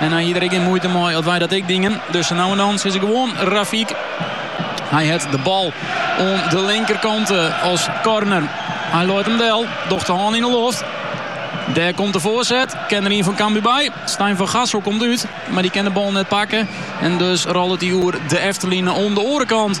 En hy hie der ek gjin muoite mei as wy dat ek dyngen. Dus sa no en dan sizze gewoan Rafik. Hy het de bal oan de linkerkant eh, as corner. Hy leit hem del, docht de hân yn de loft. Dêr komt de foarset, ken der ien fan Cambuur by. Stijn van Gassel komt út, mar die ken de bal net pakken. En dus rôlet hy oer de efterline oan de oare kant.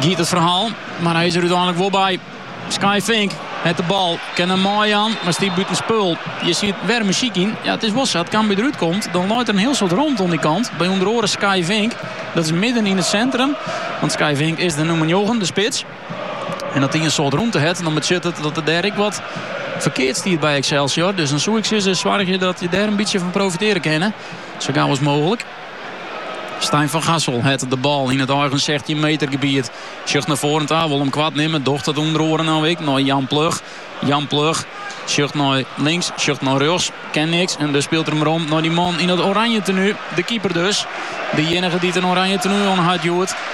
Giet it ferhaal, mar hy is der úteinlik wol by. Skye Vink het de bal, kin him meijaan, mar stiet bûtenspul. Hjir siet wer muzyk yn. Ja, it is wol sa, as Cambuur derút komt, dan leit der in hiel soad romte oan dy kant. By ûnder oare Skye Vink. Dat is midden yn it sintrum, want Skye Vink is de nûmer njoggen, de spits. En as dy in soad romte het, dan betsjut it dat der dêr ek wat ferkeard stiet by Excelsior. Dus dan soe ik sizze, soargje dat je dêr in bytsje fan profitearje kinne, sa gau as mooglik. Stijn van Gassel het de bal yn it eigen 16 meter gebiet. Sjocht nei foaren ta, wol hem koart nimme. Docht dat ûnder oaren no ek nei Jan Plug. Jan Plug sjocht nei links, sjocht nei rjochts. Ken niks en dus spilet er hem werom nei dy man yn it oranje tenue. De keeper dus. De jinnige dy't in oranje tenue oan hat hjoed.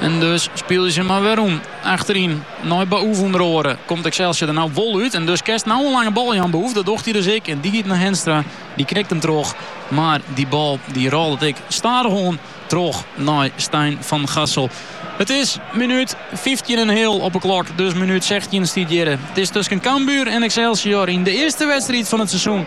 En dus spylje se mar werom. Achteryn nei Baouf ûnder oare. Komt Excelsior der nou wol út. En dus kenst nou in lange bal jaan, Baouf. Dat docht hy dus ek. En dy giet nei Henstra. Dy knikt him troch. Mar dy bal dy rôlet ek stadichoan troch nei Stijn van Gassel. It is minút fyftjin en in heal op 'e klok. Dus minút sechstjin stiet hjirre. It is tusken Cambuur en Excelsior yn de earste wedstriid fan it seizoen.